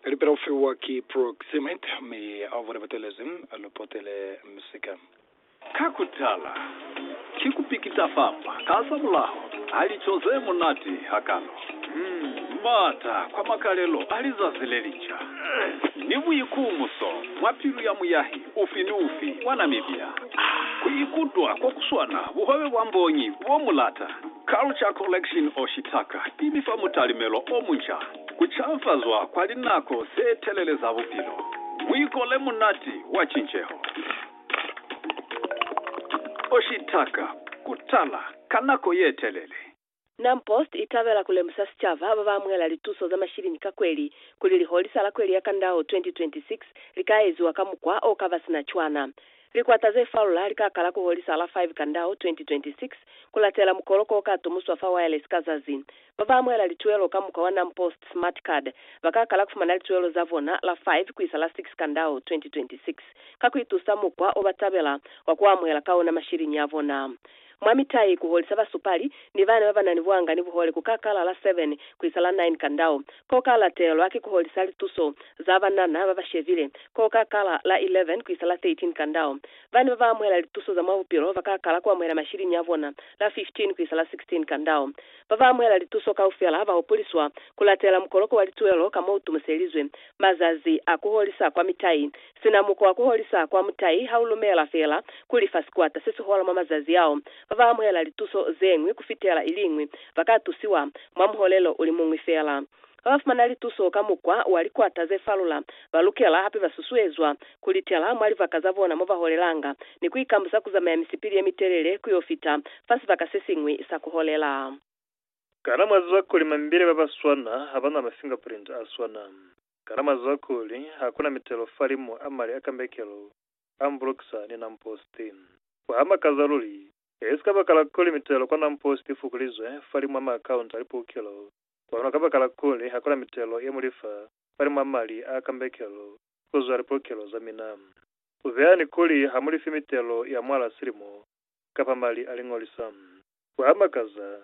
Lipela u fiwa ki proximit mi abo ne ba telezi lu potele misika. Ka ku tala, ki ku pikita fapa ka za mulaho ha lico ze munati hakalo, m'ata kwa makalelo a lizazi le lica, ni buikumuso mwa pilu ya muyahi ufi ni ufi wa Namibia ku ikutwa ko ku swana buhwebe bwa mbonyi bo mu lata. Culture Collection of Shitaka i mi fa mutalimelo o munca, ku canfazwa kwa linako ze telele za bupilo, buikole munati wa cinceho. O Shitaka, ku tala ka nako ye telele. Nam Post i tabela ku lemusa sicaba ba ba amuhela lituso za mashilini ka kweli kuli liholisa la kweli ya Kandao 2026 li ka eziwa ka mukwa o ka ba sina cwana. Likwata ze faula li ka kala ku holisa la 5 Kandau 2026 ku latela mukoloko o ka tumuswa fa wireless ka zazi. Ba ba amuhela lituelo ka mukwa wa NamPost Smart Card ba ka kala ku fumana lituelo za bona la 5 ku isa la 6 Kandau 2026 ka ku itusa mukwa o ba tabela wa ku amuhela ka ona mashiliñi a bona. Mwa mitai, ku holisa basupali ni bana ba ba na ni buanga ni buhole ku ka kala la 7 ku isa la 9 ka ndau. Ko ka latelwa ki ku holisa lituso za banana ba ba shebile, ko ka kala la 11 ku isa la 13 ka ndau. Bana ba ba amuhela lituso za mwa bupilo ba ka kala ku amuhela mashilini a bona la 15 ku isa la 16 ka ndau. Ba ba amuhela lituso kaufela ba hupuliswa ku latela mukoloko wa lituelo ka mo u tumuselizwe. Mazazi a ku holisa kwa mitai Sina mukwa wa ku holisa kwa mutai ha u lumela fela kuli fa sikwata se si hola mwa mazazi ao, ba ba amuhela lituso ze ñwi ku fitela ili ñwi ba ka tusiwa mwa muholelo u li muñwi fela. Ba ba fumana lituso ka mukwa wa likwata ze falula ba lukela hape ba susuezwa ku litela mwa libaka za bona mo ba holelanga ni ku ikambusa ku zamaya misipili ye mitelele ku yo fita fa sibaka se siñwi sa ku holela. Kana mwa ziba kuli mambile ba ba swana ha ba na mafingerprint a swana? Kana mazuha kuli hakuna mitelo falimu a mali a kambekelo a mbulukisa ni Namposti? Ku ha makaza luli! E si kabakala kuli mitelo kwa Namposti i fukulizwe falimu a maakaunta a lipukelo, kono kabakala kuli hakuna mitelo ye mu lifa falimu a mali a kambekelo ku zwa lipukelo za mina. Ku beha ni kuli ha mu lifi mitelo ya mwala silimo kapa mali a liñolisa. Ku ha makaza!